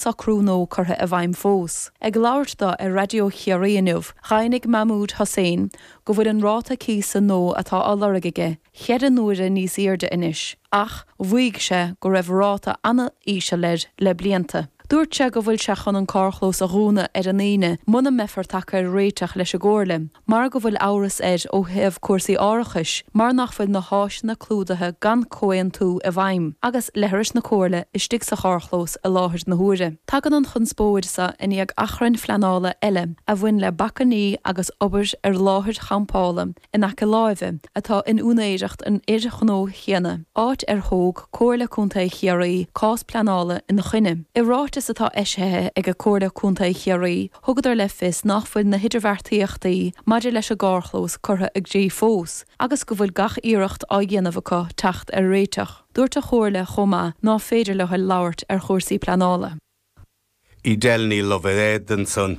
socrú nua curtha i bhfeidhm fós. Ag labhairt dó ar Raidió Chiarraí inniu, dhaingnigh Mahmoud Hossain go bhfuil an ráta cíosa nua atá á lorg aige cheithre n-uaire níos aoirde anois ach mhaígh sé go raibh ráta an-íseal air le blianta. Dúirt sé go bhfuil sé chun an carrchlós a dhúnadh ar an Aoine muna mbeifear tagtha ar réiteach leis an gComhairle. mar go bhfuil amhras air ó thaobh cúrsaí árachais mar nach bhfuil na háiseanna clúdaithe gan comhaontú i bhfeidhm, agus leithris na Comhairle istigh sa charrchlós i láthair na huaire. Tagann an chonspóid seo i ndiaidh achrainn phleanála eile a bhain le bacainní agus obair ar láthair champála in aice láimhe atá in úinéireacht an fhir ghnó chéanna, áit ar thóg Comhairle Contae Chiarraí cás pleanála ina choinne. I ráiteas atá eisithe ag Comhairle Contae Chiarraí, Thugadar le fios nach bhfuil na hidirbheartaíochtaí maidir leis an gcarrchlós curtha i gcrích fós agus go bhfuil gach iarracht á dhéanamh acu teacht ar réiteach. Dúirt an Chomhairle chomh maith ná féidir leo labhairt ar chúrsaí pleanála. I dtéarmaí Love Edison.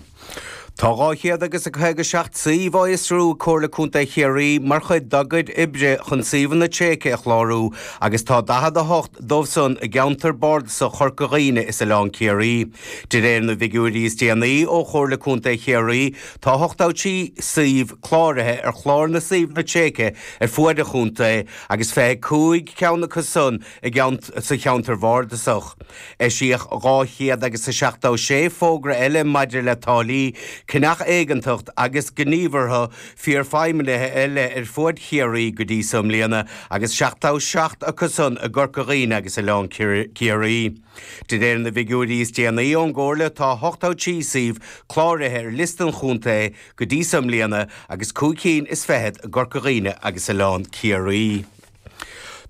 Tá dhá chéad agus a caoga seacht suíomh á fhiosrú ag Comhairle Contae Chiarraí mar chuid dá gcuid oibre chun suíomhanna tréigthe a chlárú agus tá daichead a hocht dóibh san i gceantar bardasach Chorca Dhuibhne is Oileán Ciarraí. De réir na bhfigiúirí is déanaí ó Chomhairle Contae Chiarraí, tá ochtó trí suíomh cláraithe ar Chlár na Suíomhanna Tréigthe ar fuaid an chontae agus 25 ceann acu san i gceann sa Cheantar Bhardasach. Eisíodh dhá chéad agus a seachtó sé fógra eile maidir le táillí, ceannach éigeantach agus gníomhartha forfheidhmithe eile ar fuaid Chiarraí go dtí so i mbliana agus seachtó seacht acu san i gCorca Dhuibhne agus Oileán Ciarraí. De réir na bhfigiúirí is déanaí ón gComhairle tá 83 suíomh cláraithe ar liosta an chontae go dtí so i mbliana agus cúig cinn is fichead i gCorca Dhuibhne agus Oileán Ciarraí.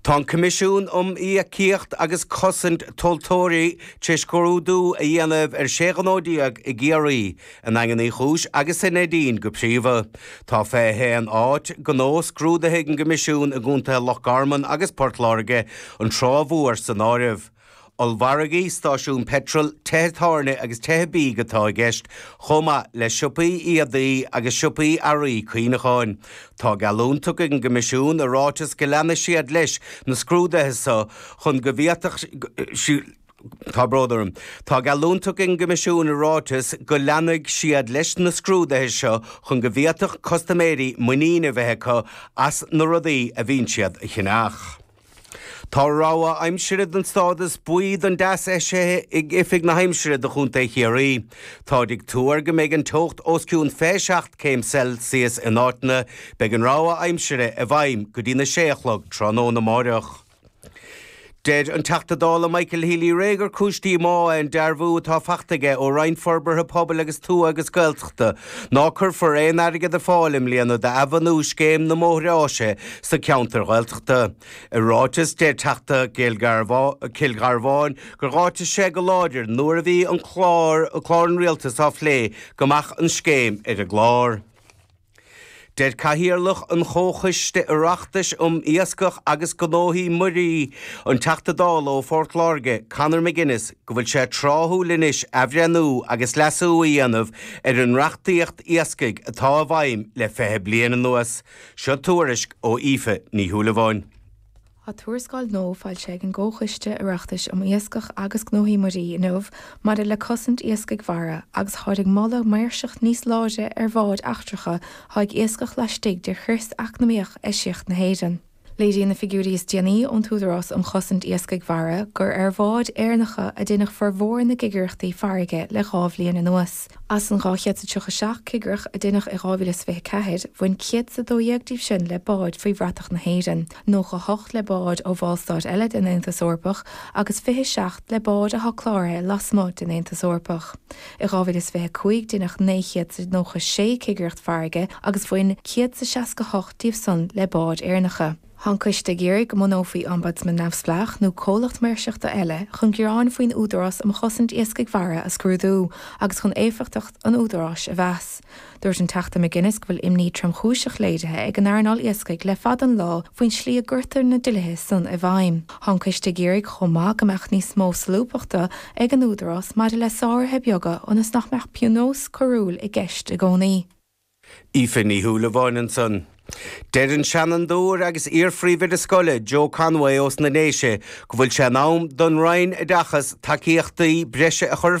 Tá an Coimisiún um Íocaíocht agus Cosaint Tomhaltóirí tar éis scrúdú a dhéanamh ar 16 ghnó i gCiarraí, I nDaingean Uí Chúis agus sa Neidín go príomha. Tá 21 áit ghnó scrúdaithe ag an gCoimisiún i gcontaetha Loch Garman agus Port Láirge, an Trá Mhór san áireamh. Ollmhargaí, stáisiúin peitril, tithe tábhairne agus tithe bídh atá i gceist, chomh maith le siopaí éadaí agus siopaí earraí cuimhneacháin. Tá geallúint tugtha ag an gCoimisiún i ráiteas go leanfaidh siad leis na scrúduithe so chun go bhféadfadh Tá brón orm. Tá geallúint tugtha ag an gCoimisiún i ráiteas go leanfaidh siad leis na scrúduithe seo chun go bhféadfadh custaiméirí muinín a bheith acu as na rudaí a bhíonn siad a cheannach. Tá rabhadh aimsire den stádas buí don dteas eisithe ag Oifig na hAimsire do Chontae Chiarraí. Táid ag tuar go mbeidh an teocht os cionn 27 céim Celsius in áiteanna. Beidh an rabhadh aimsire i bhfeidhm go dtí na sé a chlog tráthnóna amáireach. Deir an Teachta Dála Michael Healy-Rae gur cúis díomá é an dearbhú atá faighte aige ó Roinn Forbartha Pobail agus Tuaithe agus Gaeltachta ná cuirfear aon airgead ar fáil i mbliana d'athbhunú Scéim na mBóithre Áise sna ceantair Ghaeltachta. I ráiteas, deir Teachta Chill Gharbháin gur áitigh sé go láidir nuair a bhí an clár an Rialtais á phlé go mbeadh an scéim ar an gclár. Deir Cathaoirleach an Chomhchoiste Oireachtais um Iascach agus Gnóthaí Muirí, an Teachta Dála ó Phort Láirge, Conor McGuinness, go bhfuil sé tráthúil anois athbhreithniú agus leasú a dhéanamh ar an reachtaíocht iascaigh atá i bhfeidhm le 20 bliain anuas. Seo tuairisc ó Aoife Ní Shúilleabháin. Tá tuarascáil nua foilsithe ag an gComhchoiste Oireachtais um Iascach agus Gnóthaí Muirí inniu maidir le cosaint iascaigh mhara agus táid ag moladh maoirseacht níos láidre ar bháid eachtracha atá ag iascach laistigh de chrios eacnamaíoch eisiach na hÉireann. Léiríonn na figiúirí is déanaí ón Údarás um Chosaint Iascaigh Mhara gur ar bháid Éireannacha a deineadh formhór na gcigireachtaí farraige le dhá bhliain anuas. As an 237 cigireacht a deineadh i 2024, bhain 112 díobh san le báid faoi bhratach na hÉireann. 98 le báid ó Bhallstáit eile den Aontas Eorpach agus 27 le báid atá cláraithe lasmuigh den Aontas Eorpach. I 2025 deineadh 996 cigireacht farraige agus bhain 168 díobh san le báid Éireannacha. Tá an Coiste ag iarraidh go mbunófaí Ombudsman neamhspleách nó comhlacht maoirseachta eile chun gearáin faoin Údarás um Chosaint Iascaigh Mhara a scrúdú agus chun éifeachtacht an Údaráis a mheas. Dúirt an Teachta McGuinness go bhfuil imní tromchúiseach léirithe ag an earnáil iascaigh le fada an lá faoin slí a gcuirtear na dlíthe san i bhfeidhm. Tá an coiste ag iarraidh chomh maith go mbeadh níos mó solúbthachta ag an Údarás maidir le sáruithe beaga ionas nach mbeadh pionós coiriúil i gceist i gcónaí. Aoife Ní Shúilleabháin ansan. Deir an Seanadóir agus iar-Phríomhoide Scoile, Joe Conway ós na Déise, go bhfuil sé in am don Roinn Oideachas tacaíochtaí breise a chur ar